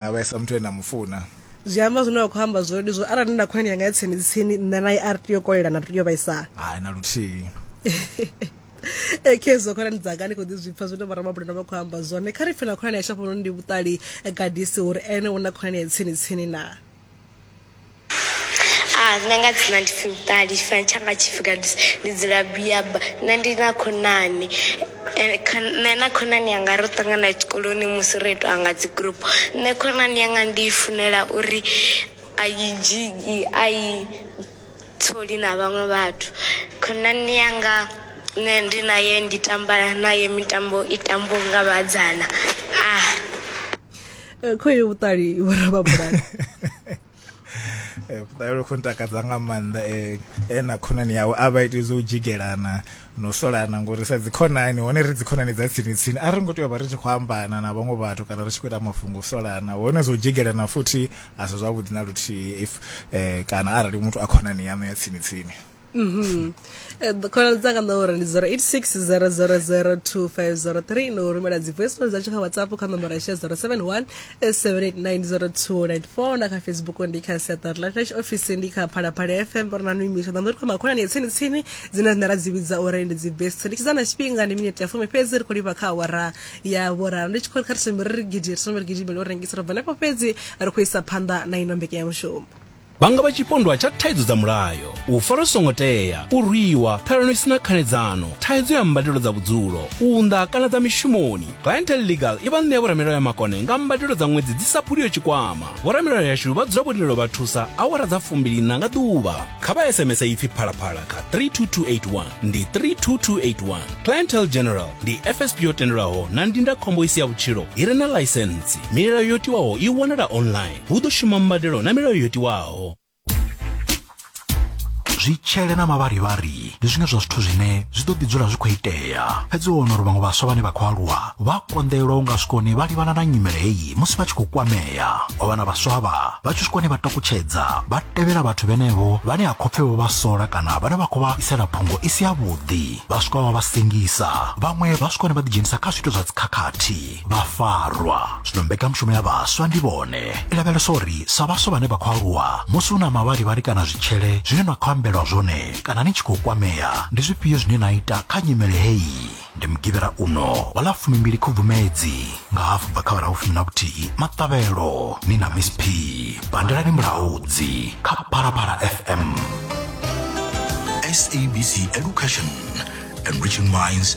a vhaisa muthu ane a mu funa zwi amba zwine wa khou amba zwone ndi zwo arali ndi na khonani yanga ya tsini tsini nṋe naye a ri tea u kolelana ri tea u vhaisana hai na luthihi e khezo khonani dzanga ni khou ḓi zwipfa zwine vhoramabulana vha khou amba zwone kha ri pfe na khonani ya shafhanoni ndi vhuṱali eh, gadisi uri ene u na khonani ya tsini tsini na Nṋe nga dzina ndi pfhi Muṱali tshifanyiso tshanga tshi pfhi kandise ndi dzula biyaba nṋe ndi na khonani nṋe na khonani yanga ro ṱangana tshikoloni musi ro itiwa nga dzi group. Nṋe khonani yanga ndi i funela uri a i dzhii a i tsoli na vhaṅwe vhathu. Khonani yanga nṋe ndi naye ndi tamba naye mitambo i tambiwa nga vhasidzana . eh, khoyo vhuṱali vho rababulani Eh, vhuṱalelo khou ntakadza nga maanḓa eh, e na khonani yawe a vha iti zwo u dzhigelana no solana ngori sa dzikhonani hone ri dzikhonani dza tsini tsini a ri ngo tea u vha ri tshi khou ambana na vhaṅwe vhathu kana ri tshi khou ita mafhungo u solana hone zwo dzhigelana futhi a si zwavhuḓi na luthihi if eh, kana arali muthu a khonani yaṋu ya tsini tsini Mhm. Eh, khonani dzanga ndo uri ndi 0860002503 no rumela dzi voice note dzatsho kha whatsapp kha nomboro yashe 071 7890294 na kha facebook ndi kha siaṱari la flash office ndi kha phalaphala fm ri na noimiswa ḓa ndo ri khoma khonani ya tsini tsini dzine dzine ra dzi vhidza uri ndi dzi best ndi tshidza na tshifhinga ndi minete ya fumi fhedzi ri khou livha kha awara ya vhuraru ndi tshi khou ri kha ri sombe ri ri gidi ri sombe ri gidimele u rengisa ro bva nefho fhedzi ri khou isa phanḓa na ino mbekanyamushumo vha nga vha tshipondwa tsha thaidzo dza mulayo u fara songo tea u rwiwa ṱhalano isina khanedzano thaidzo ya mbadelo dza vhudzulo u unḓa kana dza mishumoni clientel legal i vha ṋea vhoramilayo ya makone nga mbadelo dza ṅwedzi dzi sa phuliyo tshikwama vhoramilayo yashu vha dzula vhonelo vha thusa awara dza fumbilina nga ḓuvha kha vha sms ipfi phalaphala kha 32281 ndi 32281 clientel general ndi fsp yo tendelwaho na ndindakhombo isi ya vhutshilo i re na ḽaisensi milayo yo tiwaho i wanala online hu ḓo shuma mbadelo na milayo yo tiwaho zwitshele na mavharivhari ndi zwiṅwe zwa zwithu zwine zwi ḓo ḓi dzula zwi khou itea fhedzi u wana uri vhaṅwe vhaswa vhane vha khou aluwa vha konḓelwa u nga swikoni vha livhana na nyimele heyi musi vha tshi khou kwamea wa vhana vhaswa vha vha tshi swikoni vha takutshedza vha tevhela vhathu vhenevho vhane ha khopfe vho vha sola kana vhane vha khou vha isela phungo i si yavhuḓi vha swika vha vha sengisa vhaṅwe vha swikoni vha ḓidzhenisa kha zwithu zwa dzikhakhathi vhafarwa zwino mbekanyamushumo ya vhaswa ndi vhone i lavhelesa uri sa vhaswa vhane vha khou aluwa musi hu na mavharivhari kana zwitshele zwine na khou ambelwa zwone kana ni tshi khou kwamea ndi zwifhio zwine na ita kha nyimele heyi ndi mugivhera uno wa ḽa fumimbili khubvumedzi nga hafu bva kha vharahu fumi na vhuthihi maṱavhelo ni na miss p pandelani mulaudzi kha phalaphala fm SABC Education, enriching minds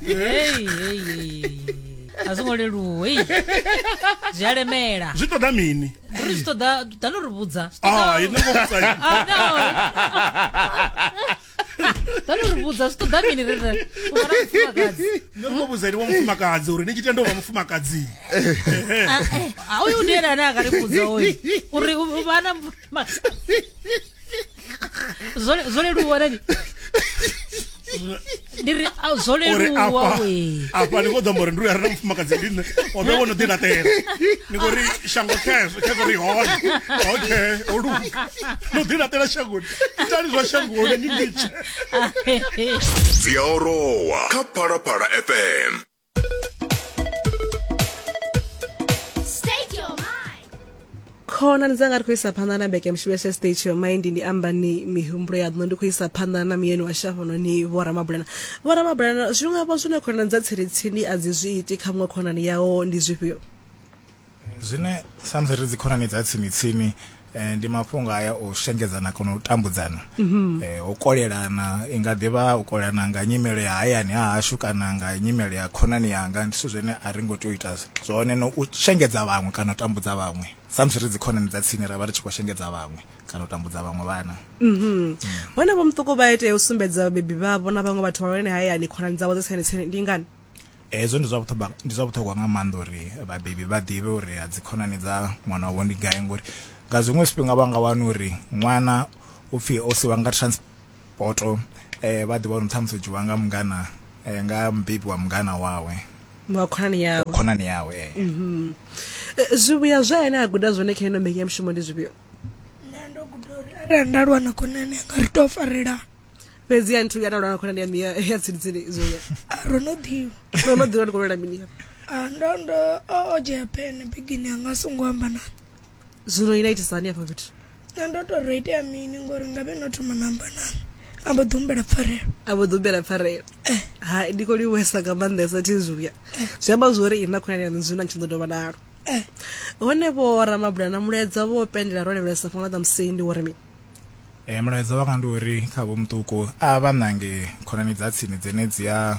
Hey, hey, hey. a zwo ngo leluwa ei. zwi a lemela zwi ṱoḓa mini ri zwi ṱoḓa ḓa no ri vhudza Ah, ini ngo vhudza ini. Ah, no. ḓa no ri vhudza zwi ṱoḓa mini rere u fana mufumakadzi Ini ngo vhudza ini wa mufumakadzi uri ni tshi tenda u vha mufumakadzi Ah, eh, ah, uyu ndi ene ane a ka ri vhudza uyu uri u- u vha na mufumakadzi Zwo- zwo leluwa nani ndi ri a, zwo uri leluwa afha we afha ni khou ḓo amba uri ndi uya rina mufumakadzi ndi nṋe o vhe wo no ḓilaṱela ni khou ri shango khezwo khezwo ri hone okay o luga no ḓilaṱela shangoni itani zwa shangoni ni nditshe dzi a orowa kha phalaphala fm khonani dzanga ri khou isa phanḓa na mbekemushumo ya state your mind ndi amba ni mihumbulo ya ḓino ndi khou isa phanḓa na muyeni wa shafhano ni vhoramabulana vhoramabulana zwiṅwe vho zwine khonani dza tsiritsini a dzi zwi iti kha muṅwe khonani yawo ndi zwifhio zwine samusi ri dzikhonani dza tsimi-tsimi eh, ndi mafhungo aya o shengedzana kana u tambudzana mhm. eh, u kolelana i nga ḓivha u kolelana nga nyimelo ya hayani ha hashu kana nga nyimelo ya khonani yanga ndi zwithu zwine a ri ngo tea u ita zwone no u shengedza vhaṅwe kana u tambudza vhaṅwe samusi ri dzikhonani dza tsini ra vha ri tshi khou shengedza vhaṅwe kana u tambudza vhaṅwe vhana mhm. hone vho muṱuku vha itea u sumbedza vhabebi vhavho na vhaṅwe vhathu vhahulwane hayani khonani dzavho dza tsini tsini ndi ngani Hezwo ndi zwa vhuṱhogwa ndi zwa vhuṱhogwa nga maanḓa uri vhabebi vha ḓivhe uri a dzi khonani dza ṅwana wavho ndi gai ngori nga zwiṅwe zwifhinga vha nga wana uri ṅwana u pfhi o siwa nga transport eh vha ḓi vha uri ṱhamusi dzhiwa nga mungana eh, nga mubebi wa mungana wawe wa khonani yawe khonani yawe eh. Mhm. Eh, zwivhuya zwa ene a guda zwone kha ino mbekanyamushumo ndi zwivhuyo nṋe ndo guda uri arali nda lwa na khonani yanga ri tou farelana fhedzi ya nthu ya na lwana khonani ya miya ya tsini tsini izo ya Ah, ro no ḓivha no no ḓivha ndi kho lwela mini ya Ah, ndo ndo o o dzhia pene bigini anga a songo amba na zwino ina itisa hani afha fhethu na ndo to ro itea mini ngori nga vhe no thoma na amba na a mbo ḓi humbela pfarelo a vho ḓumbela pfarelo hai ndi khou liwesa nga maanḓesa thi zwiya zwi amba zwori ina khonani yaṋu zwino a tshi ḓo dovha nalo eh hone vho ramabula na muleza vho pendela ro levhelesa fhano ḓa musendi wo ri mini Mulaedza wanga ndi uri kha vho muṱuku a vha ṋange khonani dza tsini dzine dzi a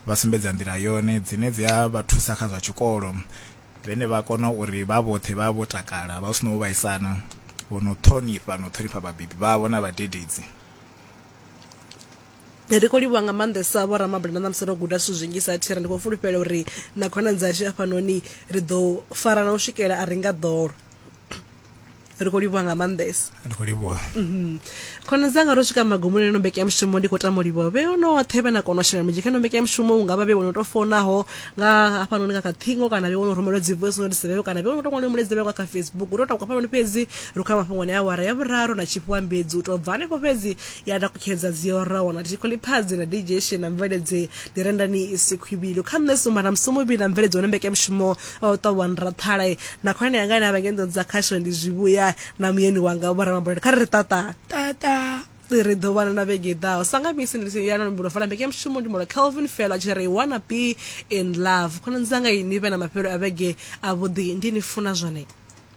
vha sumbedza nḓila yone dzine dzi a vha thusa kha zwa tshikolo vhane vha kona uri vha vhoṱhe vha vho takala vha hu si na u vhaisana vho no ṱhonifha no ṱhonifha vhabebi vhavho na vhadededzi. Ri khou livhuwa nga maanḓesa vho ramabula na ṋamusi ro guda zwithu zwinzhi sa thera ndi khou fulufhela uri na khonani dzashu afhanoni ri ḓo farana u swikela a ri nga ḓolo. ri khou livhuwa nga maanḓesa ri khou livhuwa mhm. khona dzanga ro swika magumoni eno mbekanyamushumo ndi khou tama u livhuwa vhe onoṱhe vhe na kona u shela mulenzhe kha ino mbekanyamushumo u nga vha vhe wono tou fonaho nga hafhanoni nga kha ṱhingo kana vhe wono rumelwa dzi voice notes vheo kana vhe wono tou ṅwaliwa muledzevheo nga kha facebook ro takuka hafhanoni fhedzi ro kha mafhungoni a awara ya vhuraru na tshifhiwa mbedzi u tou bva hanefho fhedzi ya takukhedza dzi oraho na tikholiphazi na dj shen na mveledze ndi rendani isi khwivhilo kha nṋe sumba na musumuvhi na mveledze wane mbekanyamushumo o ṱwa wa nraṱhala na khulwane yanga ine a vha ngei nḓoni dza khasho ndi zwivhuya na muyeni wanga vho ramabulele kha ri ri tata tata ri ḓo vhana na vhege ḓaho sa nga misi ndi ya na mbulo fana mbeke mushumo ndi mulo kelvin fela tshi ri wanna be in love khonani dzanga ini vhe na mafhelo a vhege a vhuḓi ndi ni funa zwone